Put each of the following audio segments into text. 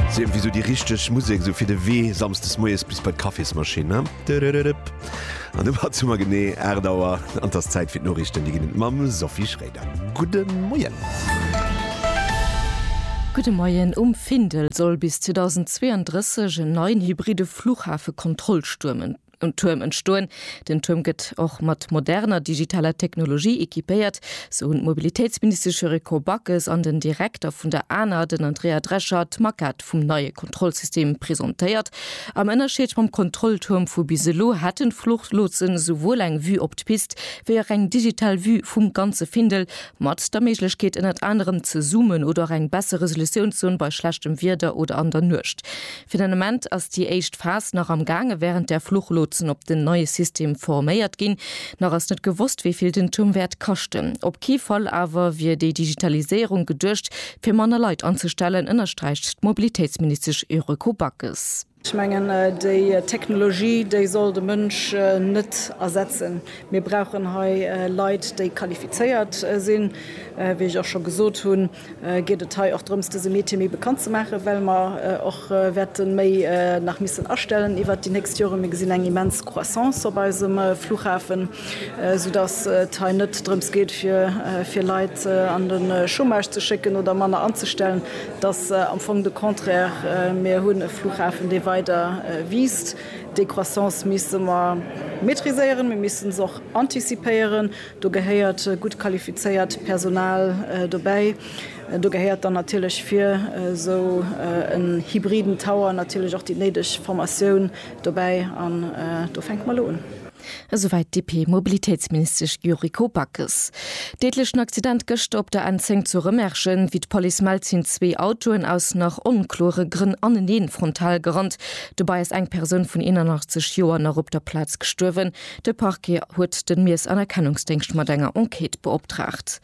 Sou iergendwéi sou déi richteg Musek sou fir de Wee samsdes moies bis bei d'Kaffismaschinn, ne? Dödödödöp. An domat hat summer genee 8 Auer an 't ass Zäit fir d'Noriichten. Déi ginn et mam Sophie Schroeder. Gudde Moien! Gudde Moien! Um Findel soll bis 2032 en neien hybride Fluchhafe-Kontrollstuerm Um Tuerm entstoen. Den Tuerm gëtt och mat moderner digitaler Technologie equipéiert, sou hunn d'Mobilitéitsministesch Yuriko Backes an den Direkter vun der ana, den Andrea Drescher, d'Maquette vum neie Kontrollsystem presentéiert. Am Ënnerscheed mam Kontrolltuerm vu bis elo hätten d'Fluchlotsen esouwuel eng Vue op d'Pist wéi och eng digital Vue vum ganze Findel, mat der Méiglechkeet ënnert anerem ze zoomen oder och eng besser Resolutionszon bei schlechtem Wieder oder an der Nuecht. Fir den Ament ass déi éischt Phas nach am gaange wärend där Fluchlotsen op den neie System forméiert ginn. Nach ass net gewosst, wéi vill den Tuerm wäert kaschten. Op kee Fall awer wier déi Digitaliséierung geduecht, fir manner Leit anzestellen, ënnersträicht d'Mobilitéitsministesch Yuriko Backes. Ech mengen, déi Technologie, déi soll de Mënsch net ersetzen. Mir brauchen hei Leit, déi qualifizéiert sinn, wéi ech och scho gesot hunn. geet et hei och drëms dëse Métier méi bekannt ze maachen, well mer och wäerte méi nach missen astellen iwwert déi nächst Joren. Mir gesinn eng immens Croissance op eisem Flughafen, soudass et hei net drëms geet fir fir Leit an de Chômage ze schécken oder manner anzestellen. Et ass am Fong de Contraire, mir hunn e Flughafen, dee weider wiisst. Déi Croissance misse mer maîtriséieren, mir misse se och antizipéieren. Do gehéiert gutt qualifizéiert Personal dobäi. Do gehéiert dann natierlech fir esou en hybriden Tower natierlech och déi néideg Formatioun dobäi an do fänke mer elo un. Esouwäit d'DP-Mobilitéitsministesch Yuriko Backes. Deedlechen Accident gëschter op der N10 zu Rëmerschen. Wéi d'Police mellt, sinn zwee Autoen aus nach onklore Grënn anenee frontal gerannt. Dobäi ass eng Persoun vun 81 Joer nach op der Plaz gestuerwen. De Parquet huet de Miersanerkennungsdéngscht mat enger Enquête beoptraagt.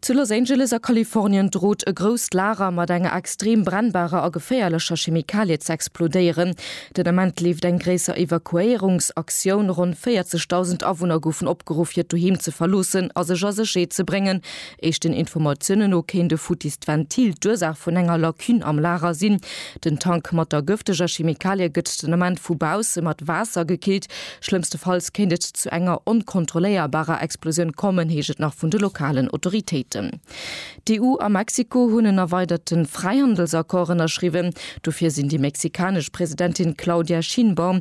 Zu Los Angeles a Kalifornien drot e grousst Lager mat enger extrem brennbarer a geféierlecher Chemikalie ze explodéieren. Den Ament leeft eng gréisser Evakuéierungsaktioun. Ronn 40.000 Awunner goufen opgeruff hiert Doheem ze verloossen a sech a Sécherheet ze bréngen, Éischten Informatiounen no kéint e futtist Ventil d'Ursaach vun enger Lacune am Lager sinn. Den Tank mat der gëfteger Chemikalie gëtt den Ament vu bausse mat Waasser gekillt. Schlëmmstefalls kéint et zu enger onkontrolléierbarer Explosioun kommen, heescht et nach vun de lokalen Autoritéiten. D'EU a Mexiko hunn en erweiderte Fräihandelsaccord ënnerschriwwen. Dofir sinn déi mexikanesch Presidentin Claudia Sheinbaum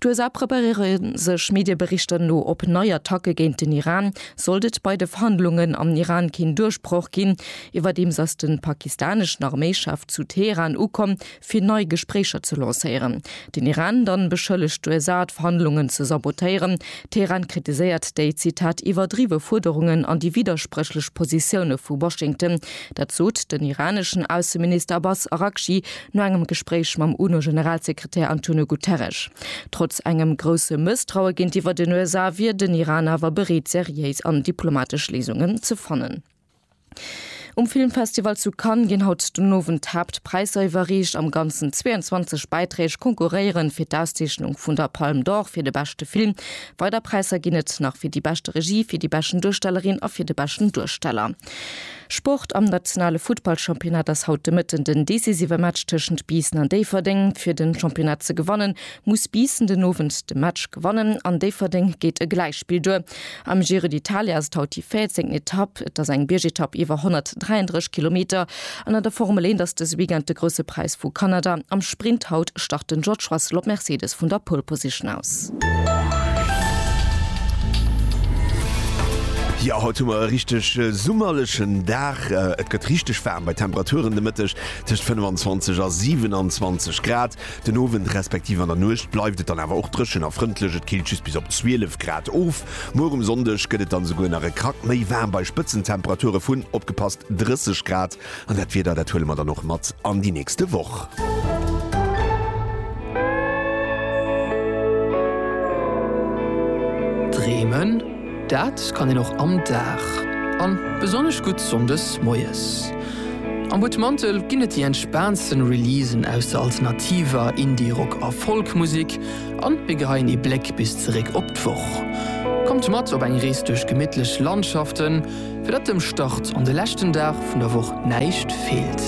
D'USA preparéiere sech Medieberichter no op nei Attacke géint den Iran, sollt et bei de Verhandlungen am Iran keen Duerchbroch ginn. Iwwerdeems ass de pakistaneschen Arméichef zu Teheran ukomm, fir nei Gespréicher ze lancéieren. Den Iran dann beschëllegt d'USA, d'Verhandlungen ze sabotéieren. Teheran kritiséiert déi, Zitat, iwwerdriwwe Fuerderungen an déi widderspréchlech Positioune vu Washington. Dat sot den iraneschen Ausseminister Abbas Araghchi no engem Gespréich mam UNO-Generalsekretär Antonio Guterres. Trotz engem grousse Mësstraue géintiwwer den USA wier den Iran awer bereet seriéis an diplomatesch Léisungen ze fannen. Um Filmfestival zu Cannes ginn haut den Owend d'Haaptpräisser iwwerreecht. Am Ganzen 22 Bäiträg konkurréiere fir d'Auszeechnung vun der Palme d'Or fir de beschte Film. Weider Präisser ginn et nach fir déi beschte Regie, fir déi beschten Duerstellerin a fir de beschten Duersteller. Sport, Am nationale Futtballchampionnat ass haut de Mëtten den decisive Match tëschent Biissen an Déifferdeng. Fir den Championnat ze gewannen, muss Biissen den Owend de Match gewannen. An Déifferdeng geet e Gläichspill duer. Am Giro d'Italia ass et haut déi 14. Etapp. Et ass eng Biergetapp iwwer 133 Kilometer. An an der Formel 1 ass dëse Weekend de Grousse Präis vu Kanada. Am Sprint haut start den George Russell op Mercedes vun der Pole Position aus. Jo, haut hu mer e richteg summerlechen Dag. Et gëtt richteg waarm bei Temperaturen de Mëtteg tëscht 25 a 27 Grad. Den Owend respektiv an der Nuecht bleift et dann awer och dréchen a frëndlech, et killt just bis op 12 Grad of. Muer um Sonndeg gëtt et dann esouguer nach e Krack méi waarm bei Spëtzentemperature vun, opgepasst, 30 Grad. An dat Wieder, dat huele mer dann och mat an déi nächste Woch. Dreemen, dat kann een och am Dag, an besonnesch gutt Sonndes moies. Am Butmantel ginn et déi entspaantsten Releasen aus der alternativer, Indie, Rock a Folk Musik, an mir geheien ee Bléck bis zeréck op d'Woch. Kommt mat op eng Rees duerch gemittlech Landschaften. Fir datt dem Start an de leschten Dag vun der Woch näischt feelt.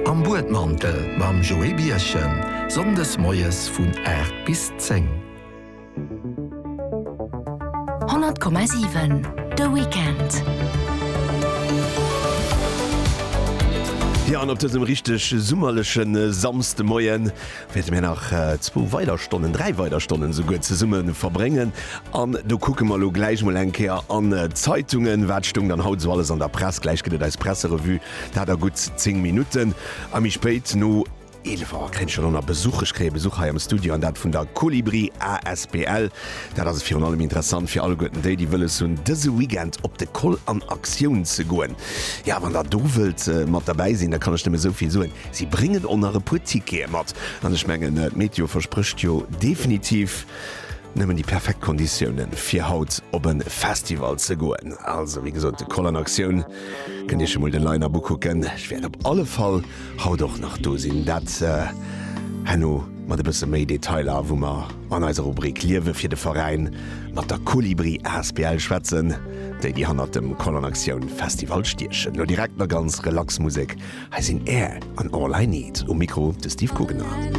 Am Buedmantel mam Joé Bierchen, Sonndes moies vun 8 bis 10. 100,7 de Weekend. Jo, an op dësem richteg summerleche Samsdemoien wäerte mir nach zwou weider Stonnen, dräi weider Stonnen esouguer zesumme verbréngen an do kucke mer elo gläich mol eng Kéier an d'Zeitungen, wat stoung dann haut esou alles an der Press. Gläich gëtt et eis Presserevue, dat a gutt 10 Minutten a méi spéit no 11 Auer kréien ech jo elo nach Besuch. Ech kréie Besuch hei am Studio an dat vun der Kolibri asbl. Dat ass virun allem interessant fir alleguerten déi, déi wëlles hunn dëse Weekend op de Koll an Aktioun ze goen. Jo, wann der do wëllt mat derbäi sinn, da kann ech nëmme esouvill soen, Si bréngen och nach e puer Tickete mat an ech mengen d'Meteo versprécht jo definitiv nëmmen déi perfekt Konditiounen fir haut op e Festival ze goen. Also wéi gesot de Koll an Aktioun. Kënnt Iech emol de Line-Up ukucken. Ech wäert op alle Fall haut och nach do sinn. Dat herno mat e bësse méi Detailer wou mer. An eiser Rubrik Liewe fir de Veräin mat der Kolibri asbl schwätzen déi, déi hannert dem Kollon Aktioun Festival stiechen. Lo direkt nach ganz relax Musek, hei sinn Air an All I Need. Um Mikro de Steve Guggenard.